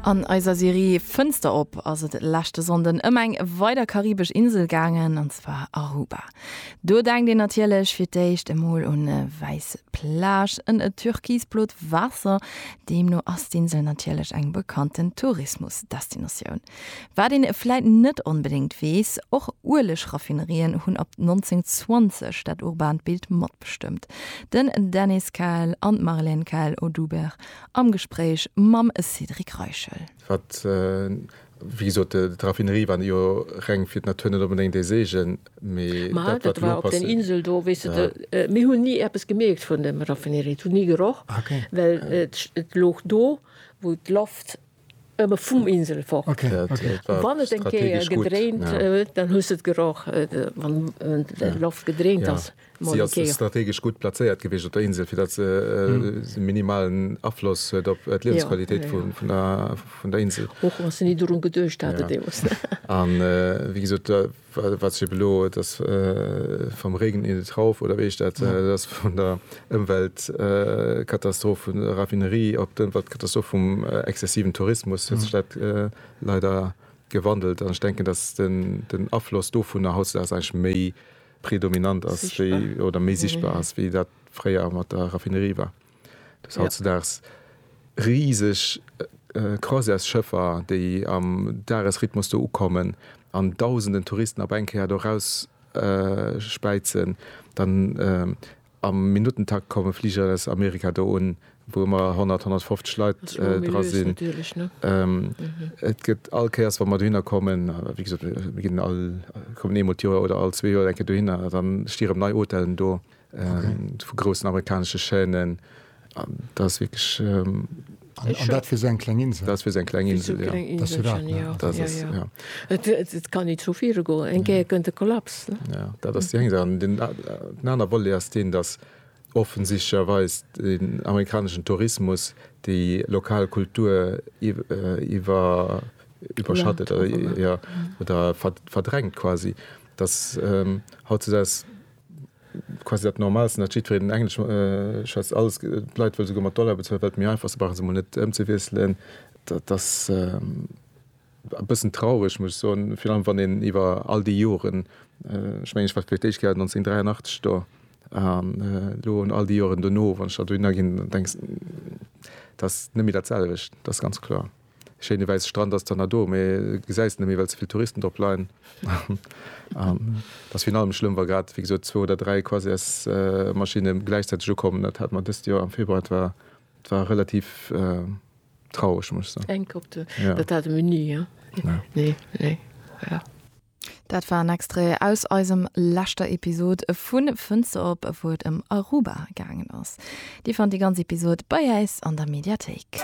An eiser Serie Fënster op ass et leschte Sonnden ëm eng weider karibesch Insel gaangen, an zwar Aruba. Do denkt een natierlech fir d'éischt emol un e wäiss Plage en e türkisblot Waasser. Deemno ass d'Insel natierlech eng bekannten Tourismusdestinatioun. Wat een vläit net onbedéngt weess, och Uelegraffinerien hunn ab 1920 dat urbaant Bild matbestëmmt. Den Dennis Käl an d'Marlène Käl-Oduber am Gespréich mam Cédric Reichel. Wat, wéi gesot, d'Raffinerie war jo reng fir d'Natur, net onbedéngt ee Seegen, mee dat, wat elo passéiert. Ëmmer vum Insel fort. Ok, ok. A wann et eng Kéier gedréint huet, dann hues de et geroch, wann d'Loft gedréint ass. Si ass strategesch gutt plazéiert gewiescht op der Insel, fir datt se e minimalen Afloss huet op d'Liewensqualitéit vun der Insel. Och wa se ni dorun geduecht haten deemools. An wéi gesot, Wat schiet elo? Et ass Vom Regen in den Trauf, oder wéi heescht dat? Et ass vun der Ëmweltkatastroph vun der Raffinerie op d'Ëmweltkatastroph vum exzessiven Tourismus huet sech dat leider gewandelt. An ech denken, datt den Afloss dovunner hautdesdaags eigentlech méi predominant ass wéi, oder méi sichtbar ass, wéi dat fréier mat der Raffinerie war. Dass hautzedaags riseg Croisièresschëffer, déi am Dagesrhythmus do ukommen an Dausenden Touristen op eng Kéier do erausspäizen, dann am Minuttentakt komme Fliger aus Amerika do un, wou ëmmer 100, 150 Leit dra sinn. Et gëtt all Kéiers, wa mer dohinner kommen, wéi gesot, mir kommen eemol d'Joer oder all zwee Joer eng Kéier dohinner, da sti rëm nei Hotellen do. vu groussen amerikanesche Chaînen, an dat ass wierklech. An dat fir esou eng kleng Insel? Dat ass fir esou eng kleng Insel, jo. Dat ass jo dat, ne? Dat ass dat, jo. Et kann ni zu viru goen, eng Kéier kënnt e Kollaps, ne? Jo, dat ass déi eng Saach. An den anere Volet ass deen, datt offensichtlecherweis den amerikaneschen Tourismus déi lokal Kultur iwwerschattet, jo, oder verdrängt quasi, datt hautzudags quasi dat Normalsten, datt jiddwereen en Englesch schwätzt, alles, d'Leit wëlle souguer mat Dollar bezuelen, well et méi einfach ass, se brauche se emol net ëmzewiesselen, dat ass e bëssen traureg, muss ech soen, virun allem wann een iwwer all déi Joren, ech mengen, ech war fir d'éischt Kéier 1983 do, an elo an all déi Joren dono, wann ech dat dohinner ginn, denkst, dat ass net méi dat selwecht, dat ass ganz kloer. Schéine wäisse Strand ass dann na do, mee gesäis net méi, well ze vill Touristen drop leien. An et ass virun allem schlëmm, wa grad, wéi gesot, zwou oder dräi Quasars-Maschinne gläichzäiteg ukommen. Dat hat mer dëst Joer am Februar, et war, et war relativ traureg, muss ech soen. Enk op de, jo, dat hate mir ni, jo, ne, nee, nee, voilà. Dat war en Extrait aus eisem leschter Episod vu Fënster op, wou et ëm Aruba gaangen ass. Dir fannt déi ganz Episod bei äis an der Mediathéik.